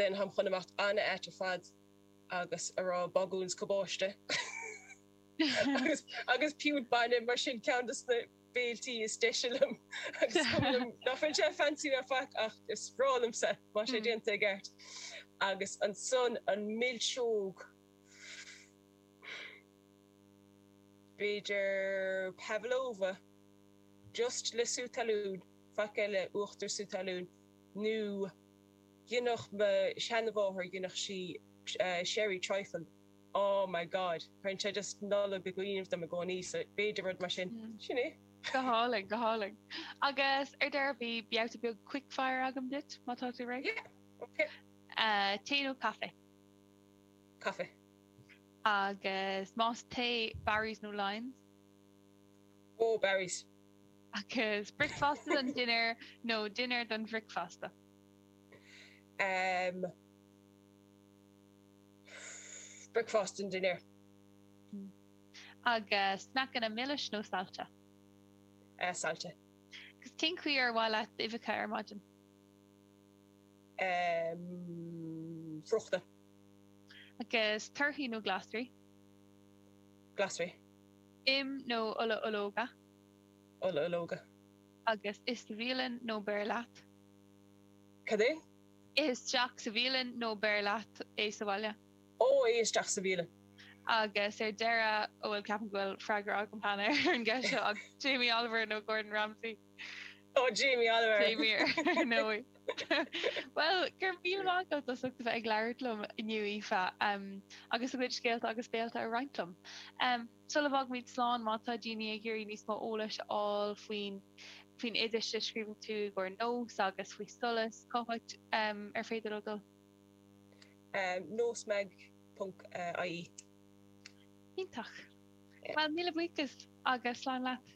den ham chun imeacht ana-ait ar fad agus a rá bagún is cabáiste agus agus piúnt bainne mar sin ceann de na béiltí is deise liom agus cuma liom ná fuil sé fancy ná faic ach is breá liomsa má sé déanta i gceart agus an son an milseog b'fhéidir pavlova just le sú talún Faic eile, uachtar, sú talún, nó dheineadh mo sheanmháthair, dheineadh sí sherry trifle, oh my God, cuireann sé just Nollaig i gcuimhne dom i gcónaí, so b'fhéidir rud mar sin, sin é. Go hálainn, go hálainn. Agus ar deireadh, beidh babhta beag quick fire agam duit, má tá tú réidh. Yeah, ok. Tae nó caife? Caife. Agus más tae, Barry's nó Lyons? Oh, Barry's. Agus bricfeasta don dinnéar nó dinnéar don bhricfeasta? Em. Bricfeasta don dinnéar. Agus sneaiceanna milis nó sailte? Eh, sailte. Agus cén chaoi ar mhaith leat uibheacha ar maidin? Em. Friochta. Agus torthaí nó glasraí? Glasraí. Im nó ola ológa. ola ológa. agus ith sa bhialann nó beir leat. Cad é? ith isteach sa bhialann nó beir leat é sa bhaile. Ó, ith isteach sa bhialann. Agus ar deireadh, an bhfuil, ceapaim go bhfuil, freagra agam cheana ar an gceist seo ach Jamie Oliver nó Gordon Ramsay? Ó Jamie Oliver! Same here, ar ndóigh. Bhuel, go raibh míle maith agat as ucht a bheith ag labhairt liom inniu, Aoife, agus do chuid scéalta agus béiltí a roinnt liom. Sula bhfágaimid slán, má tá daoine ag iarraidh níos mó eolais a fháil faoi na faoi na hoidis a scríobhann tú i gcomhair nós agus faoi solas, cá háit ar féidir leo dul? Nósmag ponc ie. Iontach. Bhuel, míle buíochas agus slán leat.